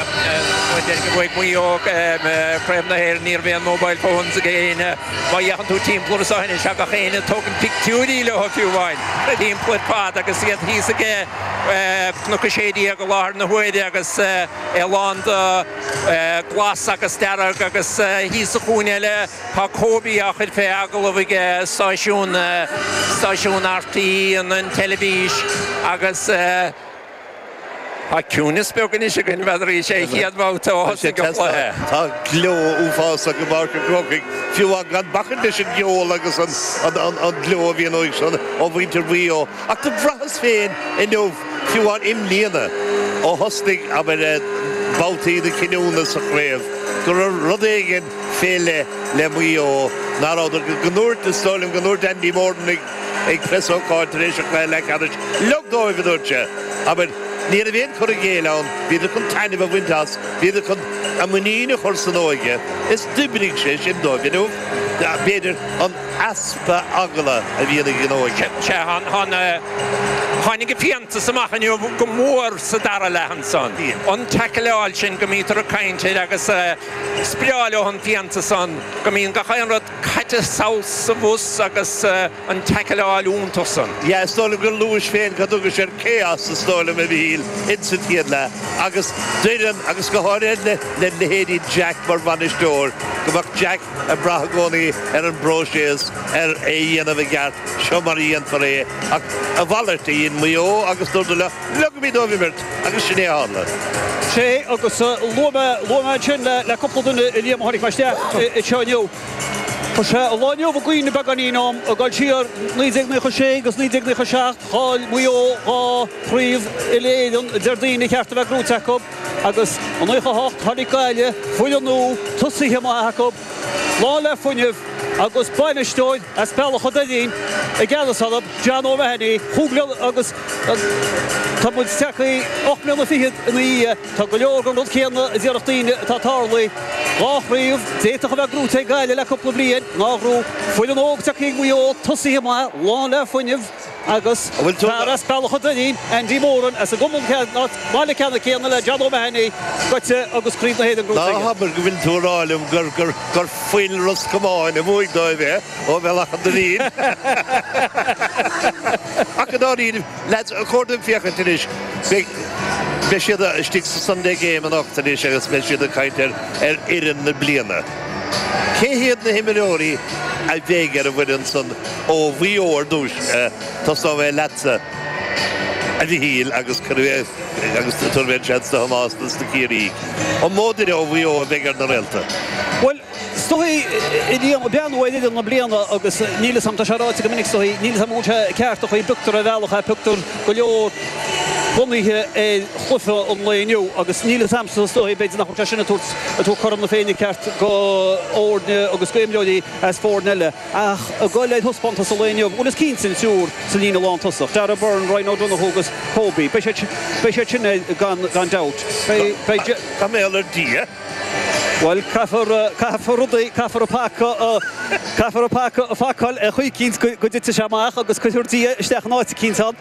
Má deir gur bhuaigh Maigh Eo Craobh na hÉireann ní raibh aon mobile phones ag éinne. Má fhéachann tú timpeall ar na sáitheanna seo gach éinne ag tógaint pictiúirí leo fiú amháin timpeall ar fad agus iad thíos ag Cnoc 16 i láthair na huaire agus é lán de glas agus dearg agus thíos sa chúinne eile tá Kobe á chur fé agallamh ag stáisiún RTÉ an teilifís agus Tá ciúnas beag anois againn, n'fheadar, is é an chéad bhabhta ó thosaigh an cluiche. Tá gleo uafásach i bPáirc an Chrócaigh, fiú amháin gan bacaint leis an gceol agus an gleo a bhíonn uaidh sin ó mhuintir Mhaigh Eo. Ach do bhraitheas féin inniu, fiú amháin i mbliana, ó thosnaigh, abair, babhtaí na cinniúna sa chraobh, go raibh rud éigin fé leith le Maigh Eo, nach rabhadar, go ndúirt, is dóigh liom, go ndúirt Andy Moran ag. Ag preasócáid tar éis an chluiche leathcheannais, leog dóibh, a dúirt sé. Abair, ní raibh aon chur i gcéill ann, bhíodar chun taitneamh a bhaint as, bhíodar chun a muinín a chur san óige is d'oibrigh sé sin dóibh. Inniu, b'fhéidir, an easpa eagla a bhíonn ag an óige. Sea, tháinig an fiántas amach inniu go mór sa dara leath ansan. An taicleáil sin go mbítear ag caint air agus is breá leo an fiántas san go mbíonn gach aon rud. Caite saghas sa bhus agus an taicleáil iontach san. Yeah, is dóigh liom gur luais féin cad a thugais air, chaos, is dóigh liom a Mhichíl insa chéad leath agus déarfainn agus go háirithe le le leithéidí Jack mar bhainisteoir go mbeadh Jack ag brath i gcónaí ar an bpróiseas ar é a dhéanamh i gceart seo mar a dhéanfar é ach a mhalairt a dhein Maigh Eo agus dúradar leogaimís dóibh imirt Agus sin é a tharla. sé agus luaigh mé, luaigh mé ansin le, le cúpla duine, sul má tháinig mé isteach anseo inniu. Chuir sé an lá inniu i gcuimhne beagáinín dom, ag dul siar, 1996 agus 1997, chaill Maigh Eo dhá chraobh uile-Éireann, deir daoine, ba cheart a bheith gnóite acu agus i naocha a hocht tháinig Gaillimh, foireann nua, tosaithe maith acu, lán le fuinneamh agus bainisteoir. as Bealach a' Doirín i gceannas orthu, John O'Mahony, chúig bhliana agus tá muid tagtha ocht mbliana fichead ina dhiaidh. Tá go leor den rud céanna a déarfadh daoine atá tarlaithe, dhá chraobh, d'fhéadfadh a bheith gnóite ag Gaillimh le cúpla bliain, nár ghnóthaigh, foireann óg tagtha ag Maigh Eo, tosaithe maith, lán le fuinneamh. Agus fear as Bealach an Doirín, Andy Moran, as an gcumann céanna, as an mbaile ceannann céanna le John O'Mahony, goite agus craobh na hÉireann gnóite aige. Ná habair go bhfuil tú ag rá liom gur gur fuil Ros Comáin a bhuaigh dóibh é, ó Bhealach an Doirín? Ach i ndáiríre, leaids, ba chóir dúinn féachaint anois. Beidh siad istigh sa Sunday Game anocht anois agus beidh siad ag caint ar fhoireann na bliana. Cé hiad na himreoirí a bheidh ar an bhfoireann san ó Mhaigh Eo ar dtús? Tosóidh mé leatsa, a Mhichíl, agus tabharfaidh mé an seans do Thomás agus do Chiarraí. An mó duine ó Mhaigh Eo a bheidh ar na réalta? Bhuel, is dóigh, a Liam, beann ar fhoireann na bliana agus níl 'fhios a'm, tá sé ráite go minic, is dóigh, níl 'fhios a'm an bhfuil sé ceart an chaoi a bpioctar ar bhealach ach pioctar go leor bunaithe ar chluiche an lae inniu agus níl 'fhios a'msa, is dóigh, b'fhéidir nach bhfuil sé sin ag tabhairt ag tabhairt cothrom na Féinne ceart do fhoirne agus do imreoirí as foirne eile ach a dhul ar thaispeántas an lae inniu? Bhuel is cinnte an triúr sa líne lántosaigh, Darragh Beirne, Ryan O'Donoghue agus Kobe. Beidh siad sin air gan dabht. Tá mé ar Dhia. Bhuel caithfear rudaí, caithfear an paca, caithfear an paca a phacáil ar chaoi eicínt go dtitfidh sé amach agus cuirfear Dia isteach in áit eicínt ann.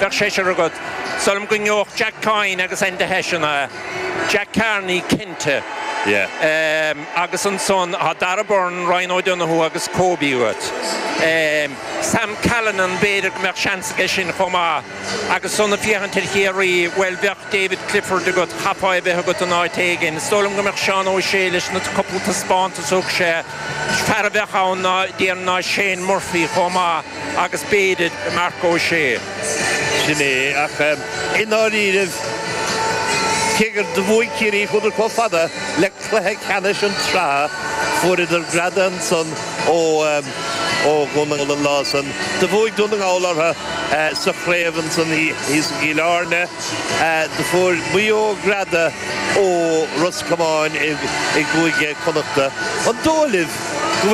Bheadh seisear agat. Is dóigh liom go ngeobhadh Jack Coyne agus Enda Hession é. Jack Carney cinnte. Agus ansan tá Darragh Beirne, Ryan O'Donoghue agus Kobe agat. Sam Callinan b'fhéidir go mbeadh seans aige sin chomh maith. Agus san ag féachaint ar Chiarraí, bhuel, bheadh David Clifford agat, chaithfeá é bheith agat in áit éigin. Is dóigh liom go mbeadh Seán O'Shea leis na cúpla taispeántas a thug sé. Fear a bheadh ann ná, déarfainn, ná Shane Murphy chomh maith. agus b'fhéidir Mark O'Shea. Sin é, ach i ndáiríribh, cé gur bhuaigh Ciarraí, chuadar chomh fada le cluiche ceannais an tsraith, fuaireadar greadadh ansan ó Dhún na nGall an lá san. Do bhuaigh Dún na nGall orthu sa chraobh ansan thíos i gCill Airne. Do fuair Maigh Eo greadadh ó Ros Comáin i gCúige Chonnacht. An dóigh libh go bhfuil.